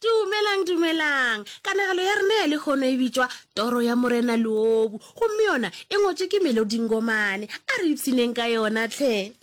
Dumelang, dumelang. Kanegelo ya rena ya lehono e bitšwa Toro ya Morena Leobu, gomme yona e ngwetšwe ke Melody Ngomane. A re ipshineng ka yona tlhe.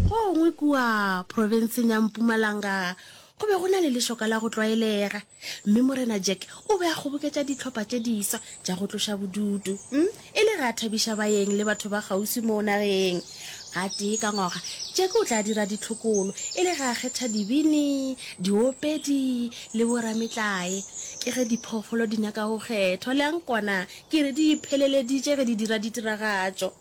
Go gongwe kua profenseng ya Mpumalanga Go be go na le lešoka la go tlwaelega, mme Morena Jack o be a kgoboketša dihlopha tše diswa tša go tloša bodutu um e le ge a thabiša baeng le batho ba kgauswi moo nageng. Gatee ka ngwaga, Jack o tla dira ditlhokolo e le ge a kgetha dibini, diopedi le borametlae. Ke ge diphoofolo di nyaka go kgethwa, le a nkwana, ke re di ipheleleditše ge di dira ditiragatšo.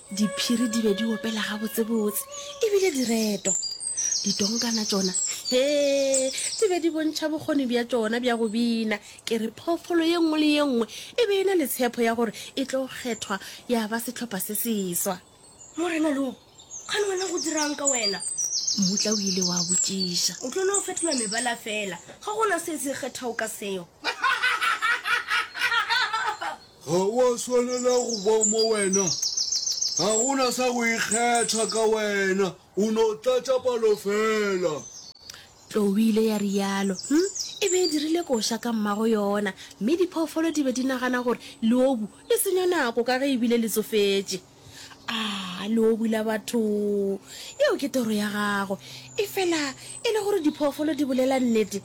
Diphiri di be di opela gabotsebotse e bile di retwa. Ditonkana tšona, hee, di be di bontšha bokgoni bja tšona bja go bina. Ke re phoofolo ye nngwe le ye nngwe e be e na le tshepho ya gore e tlo kgethwa ya ba sehlopha se seswa. Morena lo, kgane wena go dira'ng ka wena? Mmutla o ile wa botšiša. O tlo no fetola mebala feela, ga go na se se kgethwago ka seo. Ga o a swanela go ba mo wena. Ga go na sa go ikgetha ka wena, o no tlatša palo fela. Tlou e ile ya realo. Hm, e be e dirile koša ka mmago yona, mme diphoofolo di be di nagana gore leobu le senya nako ka ge e bile le tsofetše. A, leobu la batho! Yeo ke toro ya gago. Efela e le gore diphoofolo di bolela nnete,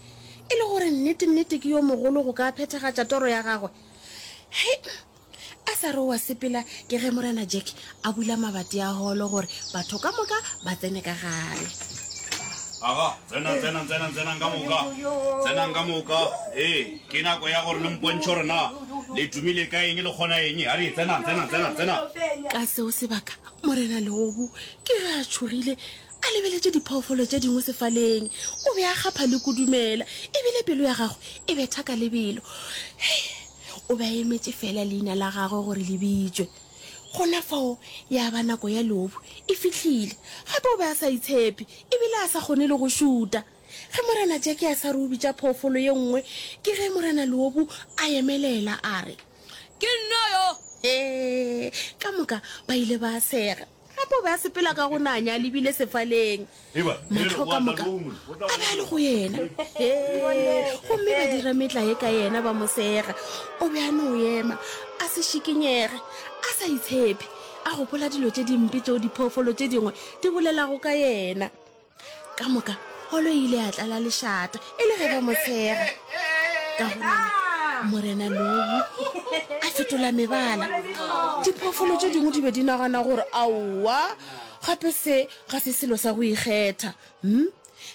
e le gore nnete-nnete ke yo mogolo go ka phethagatša toro ya gagwe, he a sa re wa sepela ke ge morena jack a bula mabati a holo gore batho ka moka ba tsene ka gare aga tsenang tsenang tsenang tsenang ka moka tsenang ka moka ee ke nako ya gore le mpontšhe gore na le tumile ka eng le kgona eng a re tsenang tsenang tsenang tsenang ka seo sebaka morena leobu ke ge a tšhogile a lebeletše diphoofolo tše dingwe sefaleng, o be a kgapha le kudumela e bile pelo ya gagwe e betha ka lebelo. Hei! O be a emetše feela leina la gagwe gore le bitšwe. Gona fao ya ba nako ya leobu e fihlile. Gape o be a sa itshepe e bile a sa kgone le go šuta. Ge Morena Jackie a sa re o bitša phoofolo ye nngwe, ke ge Morena Leobu a emelela a re, Ke nna yo! Hee! Ka moka ba ile ba sega. Gape o be a sepela ka go nanya a lebile sefaleng. Mahlo ka moka a be a le go yena. Hee! Gomme ba dira metlae ka yena, ba mo sega. O be a no ema, a se šikinyege, a sa itshephe, a gopola dilo tše dimpe tšeo diphoofolo tše dingwe di bolelago ka yena. ka moka golo e ile ya tlala lešata e le ge ba mo tshega ka gona morena lobu a fetola mebala diphoofolo tše dingwe di be di nagana gore aowa gape se ga se selo sa go ikgetha hmm?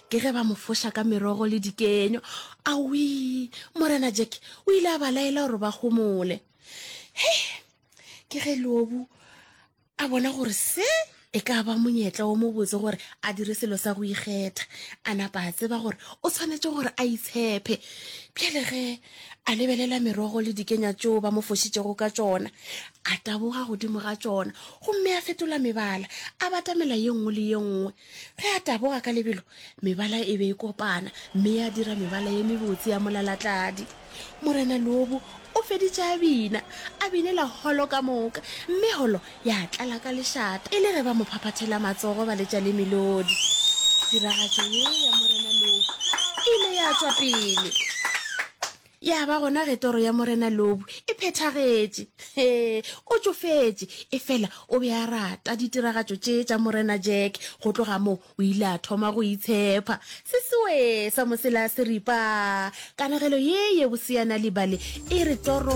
ke ge ba mo foša ka merogo le dikenywa awi morena jack o ile a ba laela gore ba gomole he ke ge lobu a bona gore se e ka ba monyetla wo mobotse gore a dire selo sa go ikgetha a napa a tseba gore o tshwanetse gore a itshephe pjale ge a lebelela merogo le dikenya tšeo ba mo fošitšego ka tšona a taboga godimo ga tšona gomme a fetola mebala a batamela ye nngwe le ye nngwe ge a taboga ka lebelo mebala e be e kopana mme ya dira mebala ye mebotse ya molalatladi morena lobu o feditše a bina a binela holo ka moka mme holo ya tlala ka lešata e le ge ba mo phaphathela matsogo ba letša le melodi tiragatšo ye ya morena lobu e ile ya tswa pele Ya ba gona ge toro ya Morena Lobu e phethagetše, hee, o tšofetše, efela o be a rata ditiragatšo tše tša Morena Jack. Go tloga moo o ile a thoma go itshepha. Se sewee sa mosela se ri, Paa! Kanegelo ye ye boseana libale e re toro